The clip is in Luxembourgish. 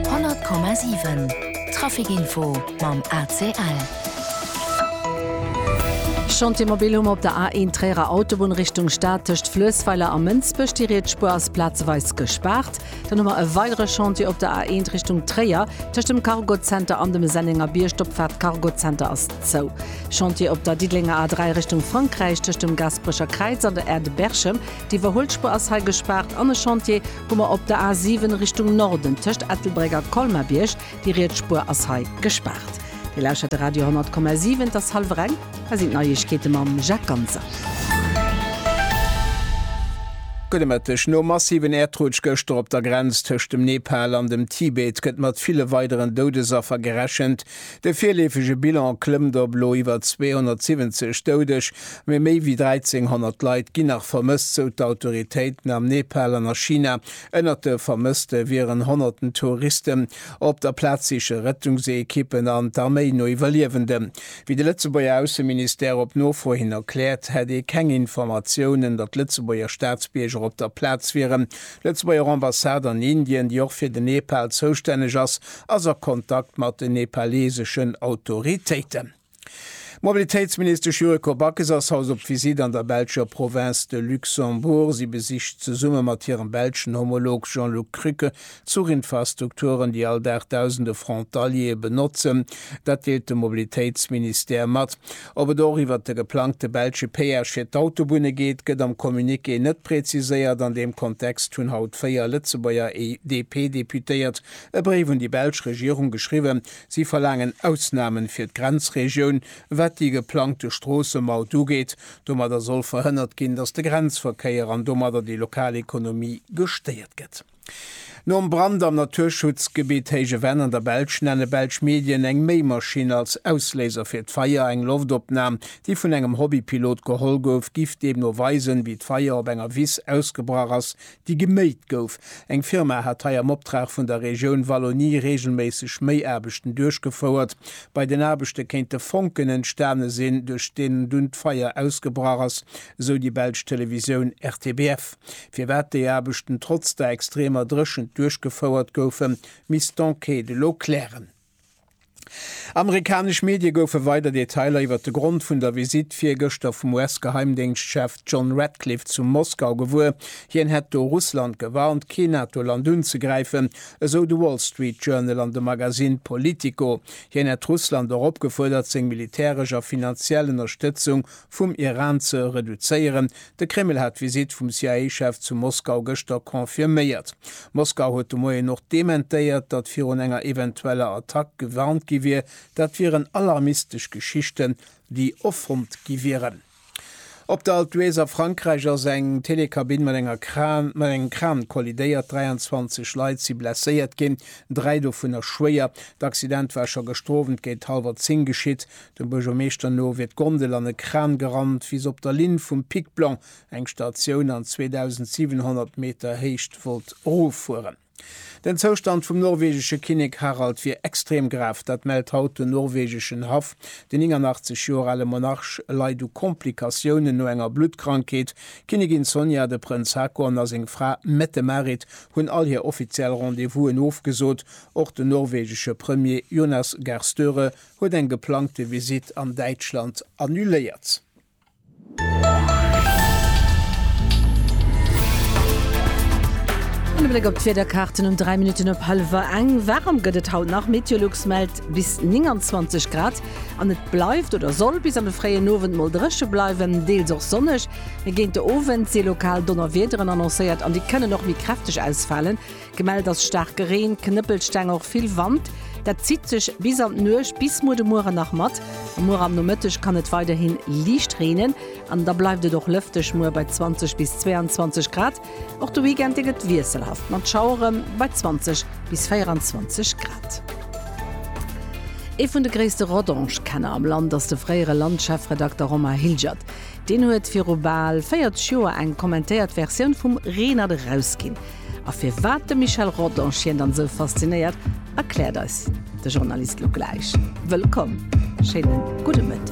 100,7 Trafic Info mam ACL. Chantier mobil hu mer op der A1 Tréierer Autobunn Richtung Stad tëscht Fluessweiler a Mënsbech. Déi riets Spuer ass plazeweis gespaart. Dann hu mer e weidere Chantier op der A1 Richtung Tréier. Tëscht dem Cargo Center an dem Sennenger Bierg, d'Opfaart Cargo Center ass zou. Chantier op der Diddelenger A3 Richtung Frankräich tëscht dem Gasperecher Kräiz an der Aire de Berchem. Déi iwwerholt Spuer ass hei gespaart. An e Chantier Hu mer op der A7 Richtung Norden tëscht Ettelbréck a Colmar-Bierg. Déi riets Spuer ass hei gespaart. Dir lauschtert de Radio 10,7. Et ass hallwer eng. Hei sinn d'Neiegkeete mam Jacques Ganser. Gudde Mëtteg. Nom massiven Äerdrutsch gëschter op der Grenz tëscht dem Nepal an dem Tibet gëtt mat ville weideren Doudesaffer gerechent. De virleefege Bilan klëmmt op elo iwwer 270 Doudeg, mee méi wéi 1.300 Leit ginn nach vermësst, sou d'Autoritéiten am Nepal an a China. Ënnert de Vermësste wieren honnerten Touristen. Op der Plaz siche Rettungsekippen an d'Arméi no Iwwerliewenden. Wéi de Lëtzebuerger Ausseministère op Nofro hin erkläert, hätt ee keng Informatiounen, datt Lëtzebuerger Staatsbierger op der Plaz wieren. D'Lëtzebuerger Ambassade an Indien, déi och fir den Nepal zoustänneg ass, ass a Kontakt mat den nepaleeseschen Autoritéiten. D'Mobilitéitsministesch Yuriko Backes ass haut op Visitt an der belscher Provënz de Luxembourg. Si besicht zesumme mat hirem belschen Homolog Jean-Luc Krücke d'Zuchinfrastrukturen, déi all Dag dausende Frontaliere benotzen. Dat deelt de Mobilitéitsministère mat. Ob et och iwwert de geplangte belsche Péage fir d'Autobunne geet, gëtt am Communiqué net preziséiert. An deem Kontext hunn haut véier Lëtzebuerger DP-Deputéiert E Bréif un déi belsch Regierung geschriwwen. Si verlaangen Ausnamen fir d'Grenzregioun, wat déi geplangte Stroossemaut ugeet. Domadder soll verhënnert ginn, datt de Grenzverkéier an domadder déi lokal Ekonomie gestéiert gëtt. Nom Brand am Naturschutzgebitt Héije Venn an der Belsch nenne belsch Medien eng Méimaschinn als Ausléiser fir d'Feier. Eng Loftopnam, déi vun engem Hobbypilot geholl gouf, giff deemno weisen, wéi d'Feier op enger Wiss ausgebrach ass, déi geméit gouf. Eng Firma hat hei am Optrag vun der Regioun Wallonie reegelméisseg Méiaarbechten duerchgefouert. Bei den Aarbechte kéinte Fonken entstane sinn, duerch deenen dunn d'Feier ausgebrach ass, esou déi belsch Televisioun RTBF. Firwat déi Aarbechten trotz der extremer Dréchent duerchgefouert goufen, misst d'Enquête elo klären. Amerikanesch Medie goufe weider Detailer iwwer de Grond vun der Visitt virgëschter vum US-Geheimdéngschtchef John Ratcliffe zu Moskau gewuer. Hien hätt do Russland gewarnt, kee NATO-Land unzegräifen, esou de Wall Street Journal an de Magasinn Politico. Hien hätt Russland och opgefuerdert, seng militäresch a finanziell Ënnerstëtzung vum Iran ze reduzéieren. De Kreml hat d'Visitt vum CIA-Chef zu Moskau gëschter confirméiert. Moskau huet de Moien och dementéiert, datt virun enger eventueller Attack gewarnt gi wier. Dat wieren alarmistesch Geschichten, déi erfonnt gi wieren. Op der Alpe d'Huez a Frankräich ass eng Telekabinn mat enger Kran mat engem Kran kollidéiert. 23 Leit si blesséiert ginn, dräi dovunner schwéier. D'Accident war scho gëschter Owend géint hallwer 10 geschitt. Dem Buergermeeschter no wier d'Gondel an e Kran gerannt, wéi se op der Linn vum Pic Blanc eng Statioun an 2.700 Meter Héicht wollt eroffueren. Den Zoustand vum norwegesche Kinnek Harald wier extrem grav. Dat mellt haut den norwegeschen Haff. Den 89 Joer ale Monarch leit u Komplikatiounen no enger Bluttkrankheet. D'Kinnigin Sonja, de Prënz Haakon a seng Fra Mette-Marit hunn all hir offiziell Rendez-Vousen ofgesot. Och den norwegesche Premier Jonas Gahr Støre huet eng geplangte Visitt an Däitschland annuléiert. An e Bléck op d'Wiederkaarten um 3 Minutten op hallwer eng. Waarem gëtt et haut nach, Meteolux mellt bis 29 Grad an et bleift oder soll bis an de fréien Owend mol dréche bleiwen, deels och sonneg. Mee géint de Owend si lokal Donnerwiederen annoncéiert an déi kënnen och méi kräfteg ausfalen. Gemellt ass staarke Reen, Knëppelsteng, och vill Wand. Dat zitt sech bis an d'Nuecht bis muer de Mueren nach mat. Muer am Nomëtteg kann et weiderhin liicht reenen an da bleift et och lëfteg, muer bei 20 bis 22 Grad. Och de Weekend dee gëtt wiesselhaft mat Schauere bei 20 bis 24 Grad. Ee vun de gréisste Rodange-Kenner am Land ass de fréiere Land-Chefredakter Romain Hilgert. Deen huet viru bal 40 Joer eng kommentéiert Versioun vum Reenert erausginn. A firwat de Michel Rodange hien dann esou faszinéiert, erkläert eis de Journalist lo gläich. Wëllkomm, schéine gudde Mëtteg.